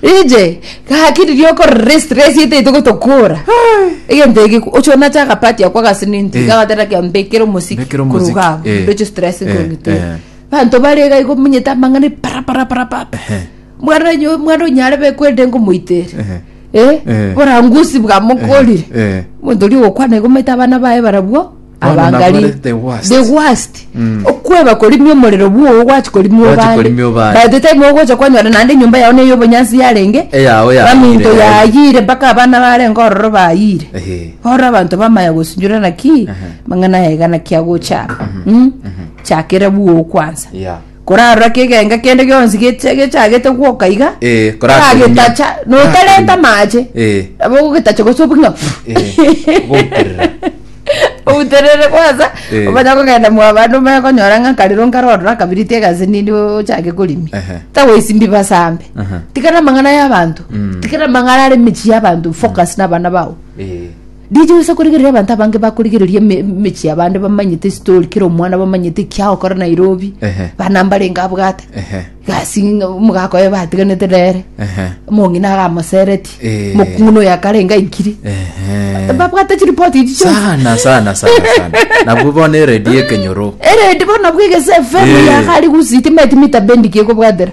Inche, gaki riria okorora esi resi etaito gotokora. Egento eke oche onache agapati ako agasiniti Eh. gagatera kia mbekere omosiki Mbekere omosiki, koruga eh. ndoche stress Eh, kong'ita eh. banto bare iga igo munyete amang'ana para para para para Ehe. mwana onye- mwana onyare be kwende ngomoitere Ehe. eh Eh. borangusi bwamokorire Eh. monto oria ogokwana igo omanyete abana baye barabwo Bono abangari nabarete the worst. the worst Mm. okweba korimia omorero bwogo gwachi korimia Gwachi obande korimia obande. by the time ogocha kwanyora naende enyomba yao neye obonyansi yarenge Eyao yayire, baminto yayire. yayire mpaka abana barenge ororo bayire Ehe. oro abanto bamaya gosinyorana naki Aha. mang'ana yaigana kiagocha Mm. chakera bwogo kwansa Yeah. Korarora kegenga kende gionsi gecha- gechagete gwoka iga, Eh, korakoinywa. oragetacha, notarenta amache, Eh. nabo ogogetacha gose obuge ng'a Eh, goterera. outerere kwansa Eh. omanye kogenda mwabande omanye konyora ng'a nkarero nkarorora akabiriti egasi nini ochake korimi Ehe. tagoisimbi basambe Aha. tikana amang'ana y'abanto Mm. tikana amang'ana are emechie y'abanto focus n'abana bao Eh. Ndiche gosa korigereria abanto abange bakorigereria eme- emechie y'abande bamanyete esitori kera omwana bamanyete ekiagokora nairobi Ehe. bana mbarenge abwate Ehe. gasi ng'a omogaka oye batiganete nere Ehe. omong'ina agamoseretie Eh. mokung'una oyo akarenge aikire Ehe. babwate chiripoti echi chionsi sana sana sana sana nabwo bono eredi ekenyoro eredi bono nabwo egese efemu Eh. yakari gusiti meti mitabendiki ekobwatera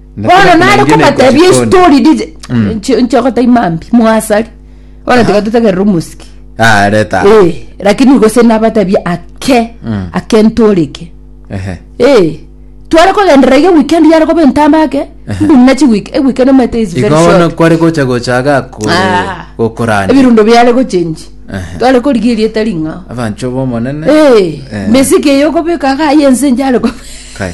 Na bono kera nare konainche kobatebia nekochikoni. estori dije Mm. nchi- nchogota imambi mwasari bono tiga totegerere omosiki Ah, reta. Eh, lakini gose nabatebia ake Mm. ake ntoreke Ehe. Eh, tware kogenderera iga weekend yare koba entamba ake mbumuna chi week- eh, weekend omanyete is very Igo bono short. kware gocha gochaga ko- Ah. gokorania. ebirundo biare gochenji Ehe. tware korigeria etari ng'ao Abancho b'omonene. Eh, Eh. mesiki eyo okobeka ga yense njare koba Kai.